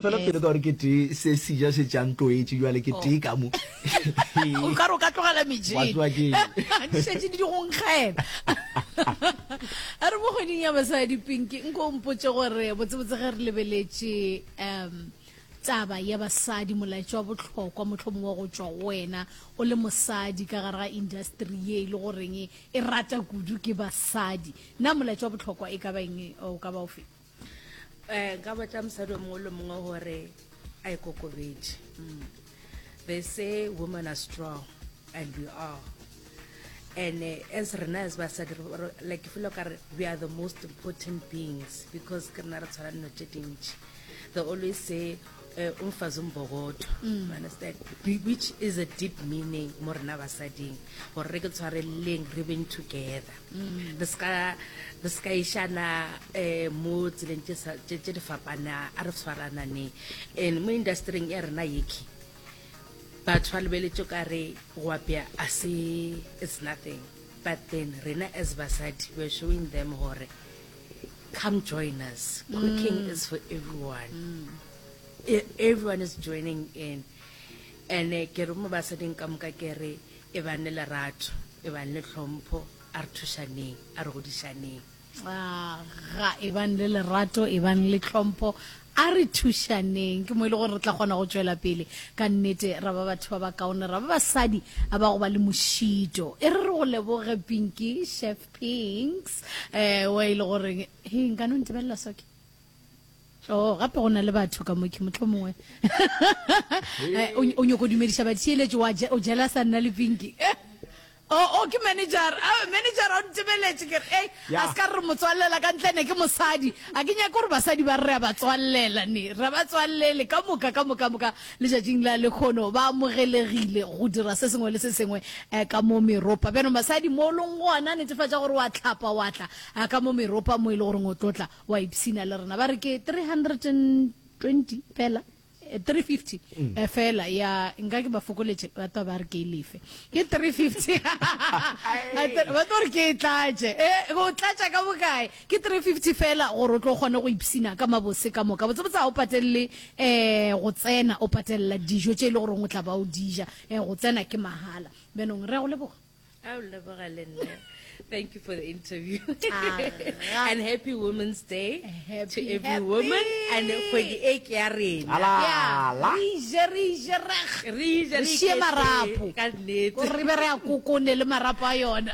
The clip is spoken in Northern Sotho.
Fela pele ka gore ke tee se seja se tša ntloetše bjale ke tee ka mo. O ka re o ka tlogela metšhini. Di šetše di di go nkgela. A re mo kgweding ya basadi Pinky nko o mpotše gore botsebotse ge re lebeletše um taba ya basadi molaetša wa bohlokwa mohlomong wa go tšwa go wena o le mosadi ka gare ga industry ye e le goreng e rata kudu ke basadi na molaetša wa bohlokwa e ka ba eng o ka ba o feng? um nka botša mosadi o mongwe le mongwe gore a ikokobetše mm. they say women are strong and we are and uh, as rena as basadi like ke felo kare we are the most important beings because ke rena re tshwana dino tše dintši they always say uh, umfazi umbokodo mm. you understand which is a deep meaning mo rena basading gore re ke tshwareleleng re beng together mm. re ska re ska ishana eh mo tseleng tse tse di fapana a re tshwarana ne and mo industryng ya rena yeki batho ba lebeletse ka re go apea a se it's nothing but then rena as basadi we're showing them gore Come join us. Cooking mm. is for everyone. Mm. E, everyone is joining in. And eh, ke re mo ba sa ding ka moka ke re e bang le lerato, e bang le tlhompho, a re thushaneng, a re godišaneng. Ah, ga e bang le lerato, e bang le tlhompho, a re thušaneng ke mo e le gore re tla kgona go tswela pele ka nnete ra ba batho ba ba kaone ra ba basadi a ba go ba le mošito e re re go leboge pinki chef Thanks. Eh, wa ile gore he nka no ntibelela soki. Oh, gape go na le batho ka moke motho mongwe. Eh, o nyoko dumedisha ba tshieletse wa o jela sa nna le pinki. Oh, okay oh, manager. Ah, manager o ntibeletse ke hey, a ska re motswallela ka ntle ne ke mosadi. A ke nyaka gore basadi ba re ba tswallela ne. Re ba tswallele ka moka ka moka moka. Letšatšing la lekhono ba amogelegile go dira se sengwe le se sengwe ka mo meropa. Bjano masadi, mo o leng gona, netefatša gore wa hlapa wa tla ka mo meropa mo e le goreng o tlo tla wa ipshina le rena. Ba re ke 320 fela, 350 fela, ya nka ke ba fokoletše, ba tlo ba re ke e lefe. Ke 350, ba tlo re ke e tlatše. E, go tlatša ka bokae? Ke three fifty fela gore o tlo kgone go ipsina ka mabose ka moka. Botsebotse ga o patelele um go tsena, o patelela dijo tše e le goreng o tla ba o di ja. Um go tsena ke mahala. Bjanong re a go leboga. A o leboga le nna. Thank you for the interview. Aga. And happy Women's Day to Happy, every happy. woman. And kgwedi e ke ya rena. Ala. Yeah. Ala. Re je, re je, re g- Re je, re re šie iketše, marapo. ka nnete. Gore re be re a kokone le marapo a yona.